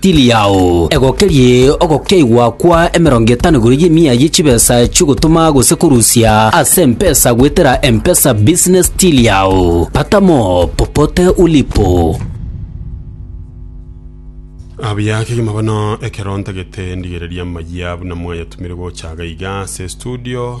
Tiri yao egokerie ogokeigwa kwa emerongo etano igoro y'emiya ye chibesa chi'ogotoma gose korusia ase empesa goetera Mpesa Business Till yao. Pata mo popote ulipo. Abuya kegima bono ekero ntagete ndigereria amayia buna mwayatumire gocha iga iga ase estudio.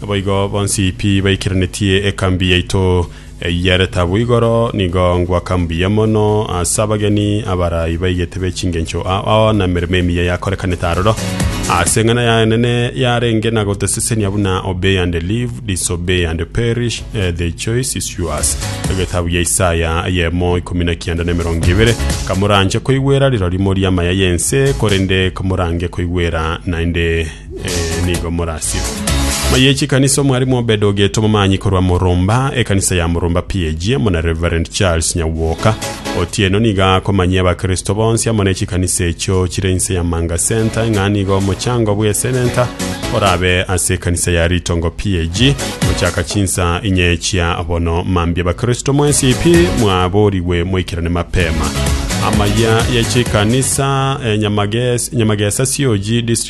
Naboigo bonsi pi baikeranetie ekambi yaito y'eretabu igoro, nigo ngwaka mbuya mono ase abageni abarai baigete be chingencho ao na emeremo emiya yakorekanete aroro. Ase eng'ana yaye enene yarenge na gotesesenia buna Obey and Live, Disobey and Perish, eh, The Choice is Yours. Egetabu ya Isaya eyemo ikomi na kianda na emerongo ebere. Kamoranche koigwera rirori moria amaya y'ense, korende kamorange koigwera naende Eh, nigo morasio maye chikanisa omwarimu obed ogeto momanyi korwa moromba ekanisa ya moromba pg muna reverend charles nyagwoka otieno niga akomanyia abakristo bonsi amo ne chikanisa echo chire inse ya manga center ng'a nigo omochango bwa esenenta orabe ase ekanisa ya ritongo pg gochaka chinsa inye chia bono mambi abakristo mwensi pi mwaborigwe moikerane mapema amaya yechikanisa eh, Nyamages- nyamagesa sioji district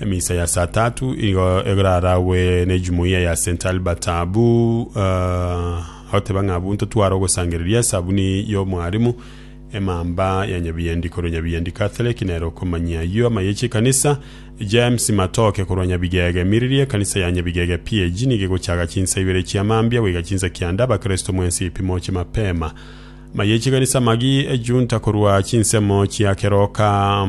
Emisa ya saa tatu igo eraragwe ne jumuiya ya St Albert abu uh, agoteba ng'a abunto tware ogosangereria esabuni y'omwarimu emamba ya nyabiyendi korwa nyabiyendi Catholic nere okomanyia ayio amayechi ekanisa James Matoke korwa nyabigege miriri ekanisa ya nyabigege PAG nigo egochaga chinsa ibere chia mambia goika chinsa kianda abakristo mwensi ipimo chi mapema mayechi ekanisa magi ejunta korwa chinsemo chia keroka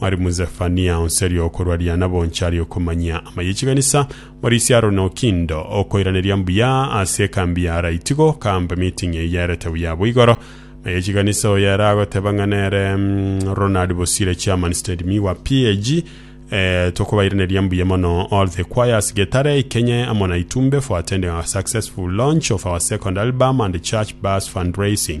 Mwarimu Zefania, onsi aria okorwa riana bonsi aria okomanyia amaya e chikanisa, Morisia Aroni Okindo, okoiraneria mbuya ase ekambi ya Araiti goka mbe meeting eye yarete buya abwo igoro maya e chikanisa oyo ere agoteba ng'a nere Ronald Bosire Chairman Stand Me wa PAG eh, tokobairaneria mbuya mono all the choirs Getare, Ikenye amo na Itumbe for attending our successful launch of our second album and church bus fundraising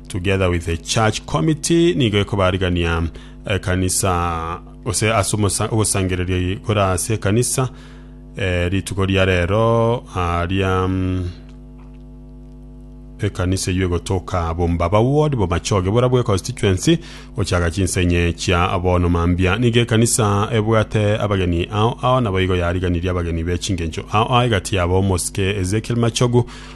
Together with the church committee nigo ekobarigania ekanisa gose ase omosa- ogosangereria eye kore ase ekanisa eh, rituko ria rero aria mm, ekanisa eywo egotoka bombaba ward bomachoge bora bwe constituency gochaga chinsenye chia bono mambia nigo ekanisa ebwate abageni ao ao nabo igo yariganirie abageni be chingencho ao ao egati yabo omosike ezekiel machogu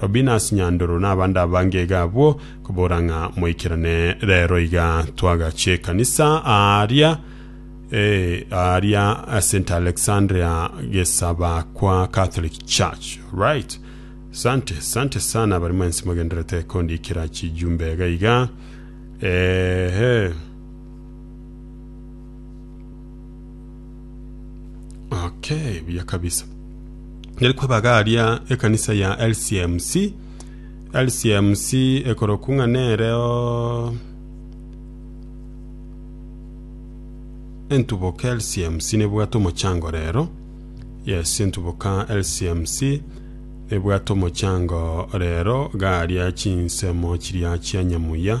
Robinus Nyandoro nabande abange iga abwo, kobora ng'a moikerane rero iga twagache ekanisa aaria eh, aaria St Alexandria Gesabakwa Catholic Church. Right. Sante, sante sana bari mwensi mogenderete kondikira chijumbe iga iga. Ehe. okay buya kabisa ngeri kwebagaria ekanisa ya lcmc lcmc ekoroku ng'a nereo entuboka lcmc nebwate omochango rero yes entuboka lcmc nebwate omochango rero garia chinsemo chiria chia nyamuya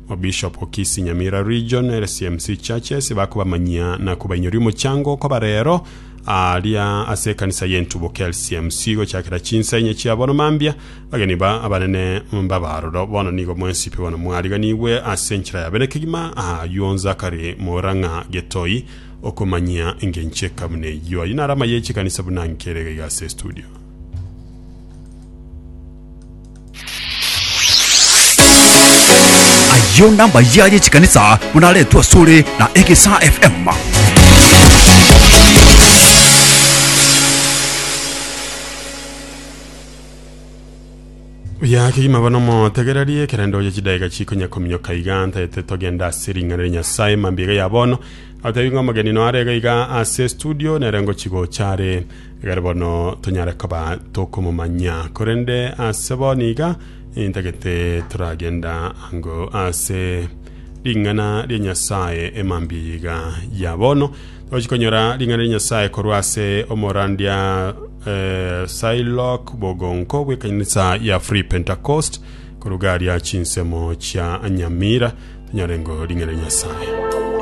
Mobishop o Kisii Nyamira Region, LCMC Churches, bakobamanyia na kobainyoria omochango okoba rero aria ase ekanisa y'entuboke LCMC gochakera chinsa inye chia bono mambia. Bageni ba abanene mbaba aroro bono nigo mwensipe bono mwariganigwe ase enchera ya bene kegima aywo onze akare moora ng'a getoi okomanyia engencho ekamuna eyio. Ayio naro amaye y'echikanisa buna nkere iga iga ase estudio. Ayio nambayia y'echikanisa buna aretwe asore na Egesa FM. oya kegima bono motegererie ekerende oye chidaika chikonya kominyoka iga ntaete togenda ase ring'ana ria nyasae mambia iga ya bono atebi ng'a omogeni noare iga iga ase studio nere ngochigocha are Egere bono tonyare koba tokomomanya, korende ase bono iga intagete toragenda ango ase ring'ana ria Nyasae emambia yiga ya bono. Togochi konyora ring'ana ria Nyasae korwa ase omorandia eh, Shylock Bogonko bw'ekanisa ya Free Pentecost korugaria chinsemo chia Nyamira tonyorengo ring'ana ria Nyasae.